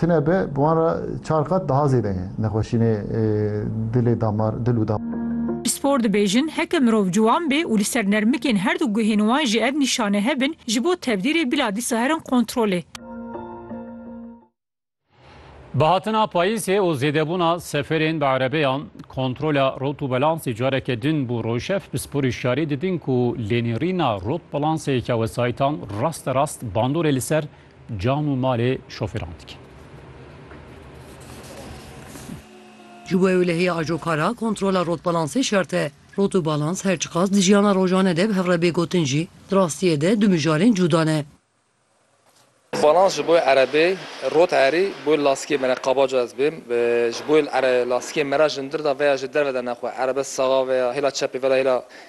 Tune be bi wan re çar qat daha zêde ye nexweşînê dilê damar dil û damar. Pispor dibêjin heke mirov ciwan bê û li ser nermikên her du guhên wan jî ev nîşane hebin ji bo tevdîrê bila dîsa herin kontrolê. Bi hatina payîzê û zêdebûna seferên bi erebeyan, kontrola rotûbelansê careke din bû rojev. Pisporî şarî didin ku lênêrîna rotbelansê yeke wesayîtan raste rast bandorê li ser Can û malê şofêran dikin. Ji bo ewlehiya ajo kar a kontrola rotbalansê şert e. Rot û balans her çiqas di jiyana rojane de bi hev re bê gotin jî, di rastiyê de du mijarên cuda ne. Balans ji bo erebê, rot erî bo lastikê me ne, qabaca ez bêm, ji bo lastikê me re ji ndir de veya ji derve de ne xwe, erebe saxa veya hêla çepê veya hêla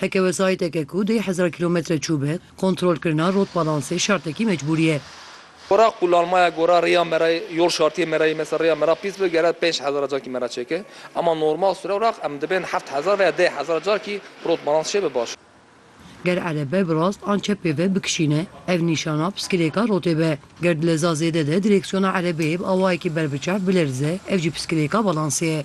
Heke wesayîteke ku deh hezar kîlometre çû be, kontrolkirina rotbalansê şertekî mecbûrî ye. Gora qulanmaya gora rêya me re yol şartiyê me re yê mesela rêya me re pîs be gere pênc hezar carkî me re çêke ema normal sure wraq em dibên heft hezar veya deh hezar carkî rotbalans çêbe baş e. Ger erebe bi rast an çep pêve bikişîne ev nîşana piskilêka rotê be. Ger di leza zêde de direksiyona erebeyê bi awayekî ber biçav bilerize ev jî piskilêka balansê ye.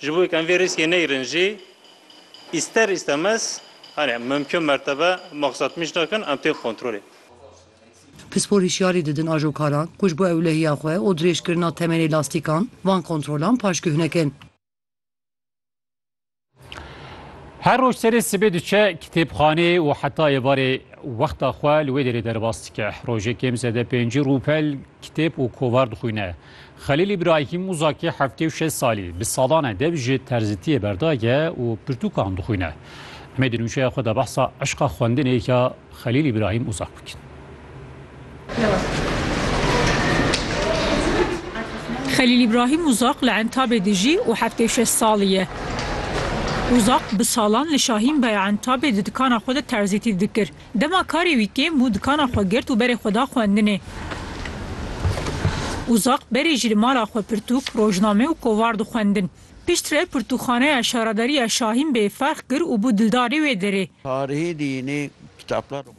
Ji bo ku em vê rîskê neyrin jî îster îstemez hanê mimkun mertebe maqsad mîş nakin em tên kontrolê. Pispor hişyarî didin ajokaran ku ji bo ewlehiya xwe û dirêjkirina temenê lastîkan van kontrolan paşguh nekin. Her roj serê sibê diçe kitêbxaneyê û heta êvarê wexta xwe li wê derê derbas dike. Rojê kêm zede pêncî rûpel kitêb û kovar dixwîne. Xelîl Îbrahîm Muzakî heftê û şeş salî bi salan e dev ji terzitiyê berdaye û pirtûkan dixwîne. Em ê di nûçeya xwe de behsa eşqa xwendinê ya Xelîl Îbrahîm Muzak bikin. Xelîl Îbrahîm Muzak li Entabê dijî û heftê û şeş salî ye. Muzak bi salan li Şahîn Beya Entabê di dikana xwe de terzîtî dikir. Dema karê wî kêm bû dikana xwe girt û berê xwe da xwendinê. Uzaq berê jî li mala xwe pirtûk, rojname û kovar dixwendin. Piştre pirtûkxaneya Şaradariya Şahîn Bey ferx kir û bû dildarê wê derê.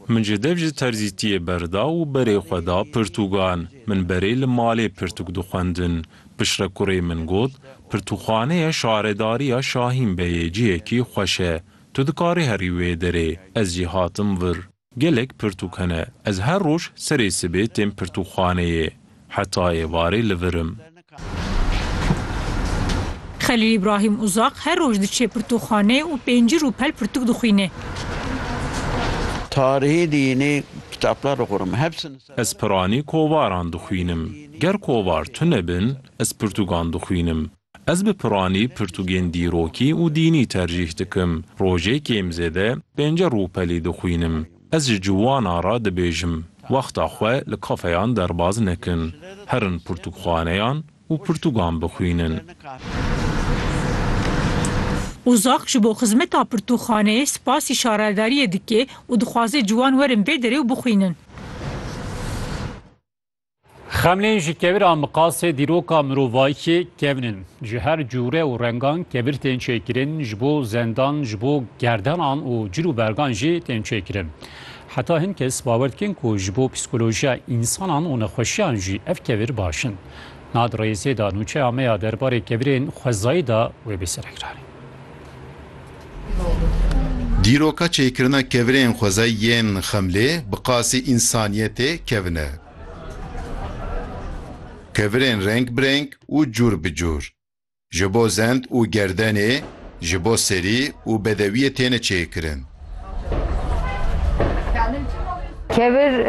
Min ji dev ji terzîtiyê berda û berê xwe da pirtûgan. Min berê li malê pirtûk dixwendin. Piştre kurê min got, Pirtûkxaneya Şaredariya Şahîn Beyê cihekî xweş e. Tu dikarî herî wê derê. Ez jî hatim vir. Gelek pirtûk hene. Ez her roj serê sibê têm pirtûkxaneyê. Heta êvarê li vir im. Xelîl Îbrahîm Uzaq her roj diçe pirtûkxaneyê û pêncî rûpel pirtûk dixwîne. Tarîhî dînî kitaplar dixwînim. Ez piranî kovaran dixwînim. Ger kovar tune bin, ez pirtûkan dixwînim. Ez bi piranî pirtûgên dîrokî û dînî tercîh dikim. Rojê kêm zêde pênce rûpelî dixwînim. Ez ji ciwana re dibêjim, wexta xwe li kafeyan derbaz nekin. Herin pirtûkxaneyan û pirtûgan bixwînin. Ozak ji bo xizmeta pirtûkxaneyê spasî şaredariyê dike û dixwaze ciwan werin vê derê û bixwînin. Xemlên ji kevir a miqasê dîroka mirovayî kevin in. Ji her cûre û rengan kevir tên çêkirin ji bo zendan, ji bo gerdenan û cil û bergan jî tên çêkirin. Heta hin kes bawer dikin ku ji bo psîkolojiya însanan û nexweşiyan jî ev kevir baş in. Niha di rêzê de nûçeya me ya derbarê kevirên xwezayî de wê bê serekranî. Dîroka çêkirina kevirên xwezayî yên Xemlê bi qasî însaniyetê kevin e. Kevirên reng bi reng û cûr bi cûr, ji bo zend û gerdenê, ji bo serî û bedewiyê têne çêkirin. Kevir